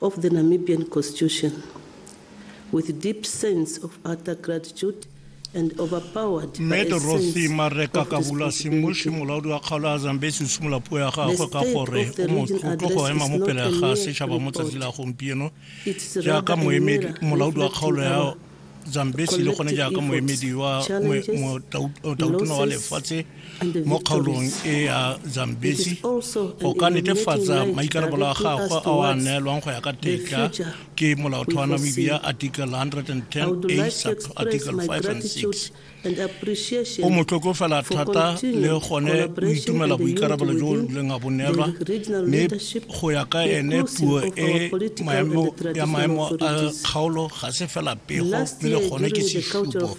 of the Namibian Constitution with deep sense of utter gratitude mme dorothy mareka kabula semoši molaodi wa kgaolo a zambesi o simola puo ya gagwe ka gore o motlotlo go ema mo pele ga setšhaba mo tsatsi la gompieno jaaka molaodi wa kgaolo ya Zambesi le gone jaaka moemedi wa motautono wa lefatshe mo kgaolong e ya Zambesi go ka netefatsa maikarabelo a gagwe a wa neelwang go ya ka tetla ke molaotheo wa Namibia Article 110 A sub Article 5 and 6 o motlokofela thata le gone o itumela boikarabelo jo leng a bo neelwa mme go ya ka ene puo e ya maemo a kgaolo ga se fela pego mme le gone ke sesupo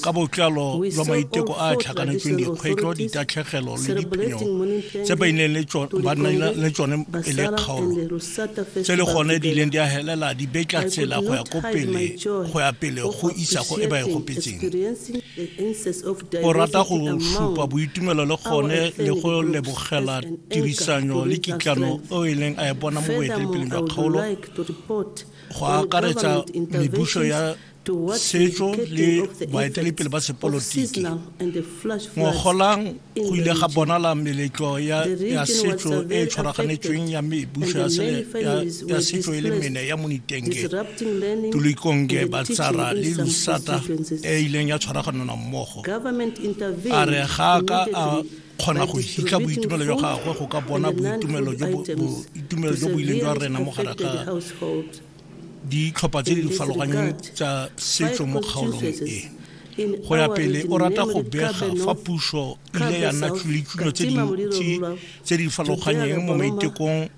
ka botlalo jwa maiteko a a tlhakanetsweng dikgwetlho ditatlhegelo le diphenyo tse ba nnang le tsone e le kgaolo tse le gone di ileng di a helela di betla tsela go ya ko pele go ya pele go isa go e ba e gopetseng o rata go supa boitumelo le gone le go lebogela tirisanyo le kitlano o e leng a e bona mo boetelepeleng jwa kgaolo go akaretsa mebuso ya setso le baetelepele ba sepolotiki ngogolang go ile ga bonala meletlo ya setso e e tshwaraganetsweng ya mebuso ya setso e le mene ya monitenge tulikonge batsara le lusata e e ileng ya tshwaraganana mmogo a re ga ka a kgona go hitla boitumelo jwa gagwe go ka bona boitumelo jo bo ileng jwa rena mo gare ga ditlhopha tse di farologaneng tsa setso mo kgaolong e go ya pele o rata go bega fa puso ile ya nna tšulitšulo tse dintsi tse di farologanyeng mo maitekong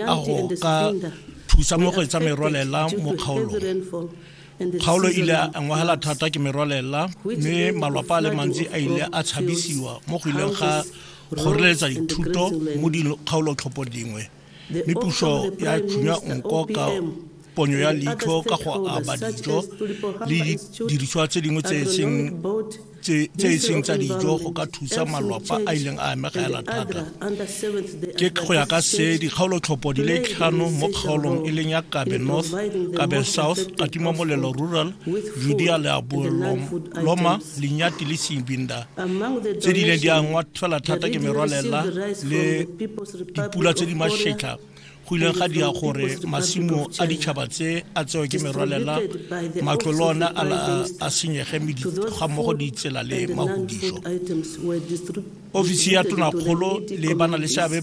a go ka thusa mo go etsa merwalela mo kgaolong kgaolo e ile a ngwagela thata ke merwalela mme malwapa a le mantsi a ile a tshabisiwa mo go ileng ga kgoreletsa dithuto mo dikgaolotlhopo dingwe mme puso ya tšhunya nko ka ponyo ya leitlho ka go aba dijo le didiriswa tse dingwe tse e seng tsa dijo go ka thusa malwapa a ileng a amegela thata ke go ya ka se dikgaolotlhopho di le tlhano mo kgaolong e leng ya kabe north kabe south katima molelo rural judea le aboloma lenyati le sebinda tse di ileng di angwa fela thata ke merwalela le dipula tse di mašetlha go ileng ga dira gore masimo a ditšhaba tse a tsewe ke merwalela matlo le one a senyege ga mmogo ditsela le mahodišo ofisi ya tonakgolo le bana le seabe